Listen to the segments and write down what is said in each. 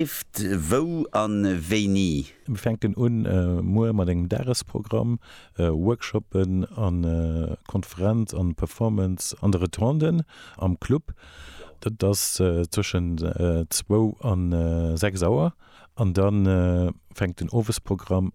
Lift, wou an wéini? Mir fänken un muer mat engem Dagesprogramm, Workshoppen an Konferenz an Performance an de Rotonden am Club. Dat ass zwëschen zwou an sechs Auer an dann fänkt den Owesprogramm.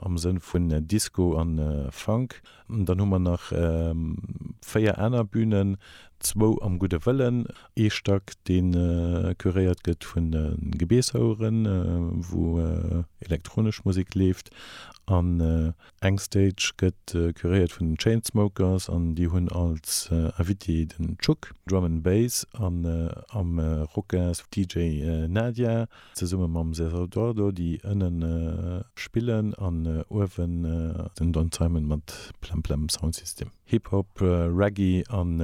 am Sënn vun Disco an Funk. Dann hu mer nach 4 aner Bünen, zwou am Gudde Wëllen, ee Stack deen curéiert gëtt vun de Gebeeshoueren, wou elektronesch Musik leeft an eng Stage gëtt curéiert vun den Chainsmokers an déi hunn als Invité den Tschuk, Drum and Bass, an am Rocas DJ Nadia. Zesumme mam César Eduardo, déi ënnen spillen an uewen den Don Simon mat Plem Plem Sound System. Hip Hop, Reggae an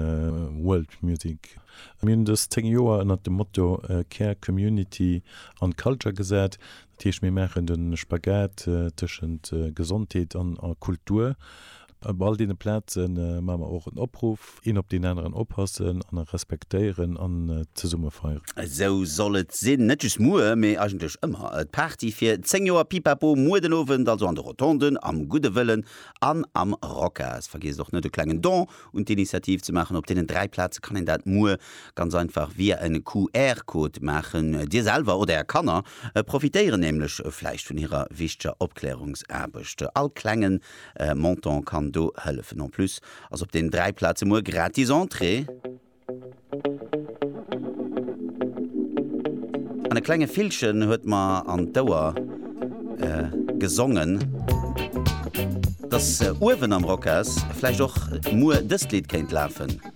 World Music. Mir hunn dës 10 Joer ënnert dem Motto Care, Community an Culture gesat. Dat heescht mir maachen de Spagat tëschent Gesondheet an Kultur. Op all deene Plaze maache mer och en Opruff, Een op deen aneren oppassen an e respektéieren an zesumme feieren. Esou soll et sinn, net just muer, mee eigentlech ëmmer. D'Party fir 10 Joer Pipapo muer den Owend also an de Rotonden, am gudde Wëllen an am Rocas. Vergiesst och net e klengen Don un d'Initiativ ze maachen. Op deenen 3 Plaze kann een dat muer ganz einfach via en QR-Code maachen. Dir selwer oder är Kanner profitéieren nämlech vläicht vun hirer wichteger Opklärungsaarbecht. All klengen Montant kann do hëllefen. En plus ass op den dräi Plaze muer gratis Entrée. An e klenge Villchen huet mer an d'Ouer gesongen, dass uewen am Rocas vläicht och muer dëst Lidd kéint lafen.